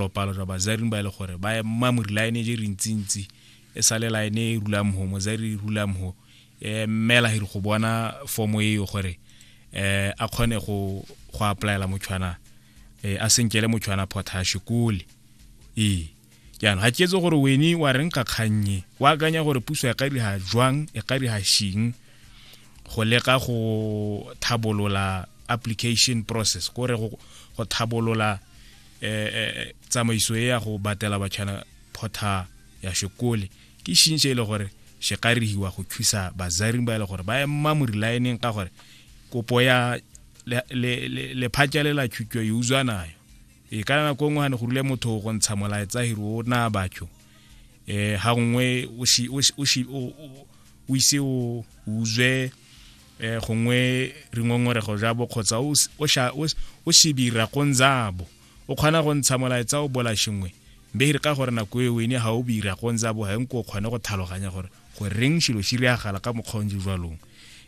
Lopalo jwa bazaring ba e le gore ba ema mo line je rintsintsi e sale line e rula mho mozari rula mho e mmela hiri go bona fomo e yo gore eh a khone go go applyela motshwana eh a senkele motshwana potash kole ee jaanong ga ketse gore wene wa reng ka kgannye o akanya gore puso e ka dira jwang e ka dira shing go leka go thabolola application process kore go thabolola eh, eh, eh, tsamaiso e ya go batela batšhana photha ya sekole ke šintšhe e le gore se ka rihiwa go thusa bazaring ba e le gore ba ema morilaeneng ka gore kopo ya lephatša le la thuto e utswa nayo e ka nako nngwe gane go rile motho go ntsha molaetsa hiri o na batho um ga nngwe o ise o utswe eh gongwe re ngongorego jabo kgotsa o shebira go nzabo o kgona go ntsha molaetsa o bola shengwe be e re ka gore nako e wene ga o bira go nzabo ga nko o kgone go tlhaloganya gore go reng shilo shi reagala ka mokgonje jwalong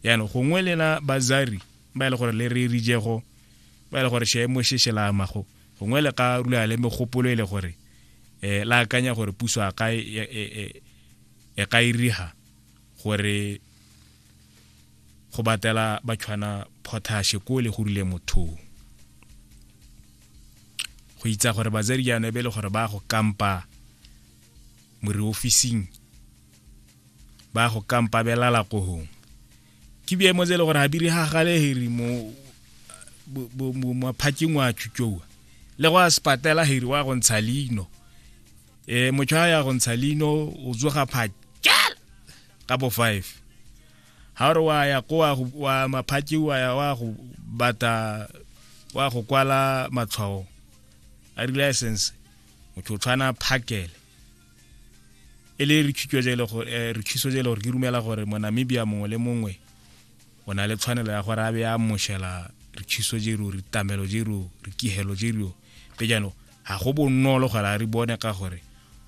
yaanong gongwe lena bazari ba e le gore le re rijego ba e le gore sheemo she shelamago gongwe le ka rula le megopolo e le gore um la akanya gore puso a ka e, e, e, e ka iriga gore go batela batshwana potashe ko le go rile mothong go itsa gore batsadi jaanong e be le gore ba go kampa more officing ba go kampa belala ko gong ke biemo tse e le gore ga di re gagaleheri mo maphatseng wa tšutšoa le go a sepatela heri wa go ntsha leino um motho a ya go ntsha leino o tsoga phakela ka bo five ga o re wa ya ko wa maphatši wa ya wa go bata wa go kwala matshwao a di-license motho o tshwana phakele e le re thuso je le gore eh, re thuso je le gore ke rumela gore mo Namibia mongwe le mongwe o na le tshwanelo ya gore a be a moshela re thuso je ro re tamelo je ro re kihelo je ro pe jaanong Ga go bonolo gore a re bone ka gore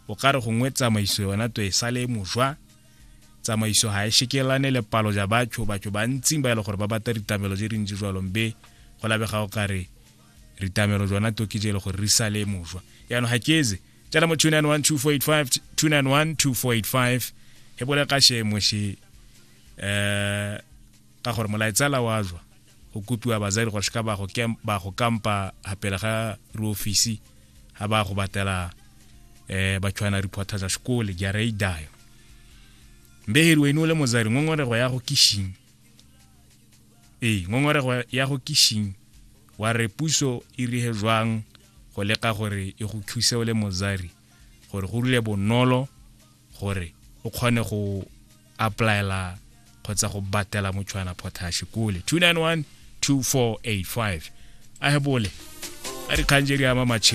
o ka re gongwe tsamaiso yona to e sale mojwa tsamaiso ga e shekelane le palo ja batho batho ba ntsing ba e le gore ba bata ritamelo je rintsi jwalong be go labega o kare ritamelo jona to ke je e le gore re sale mojwa yaanong ga ke eze tsena mo 2912485 e bole ka shemo she um ka gore molaetsala wa jwa go kopiwa bazali gore seka ba go kampa gapela ga re ofisi ga ba go batela um eh, batshwana reporter tsa sekole jara e dayo mbeheri wene o le mozari ngongorego ya go kishing ee ngongorego ya go kishing wa re puso e rige jwang go leka gore e go thuse o le mozari gore go rile bonolo gore o kgone go applyela kgotsa go batela motshwana potash kole 291 2485 a hebole a dikgang je di ama matšhelo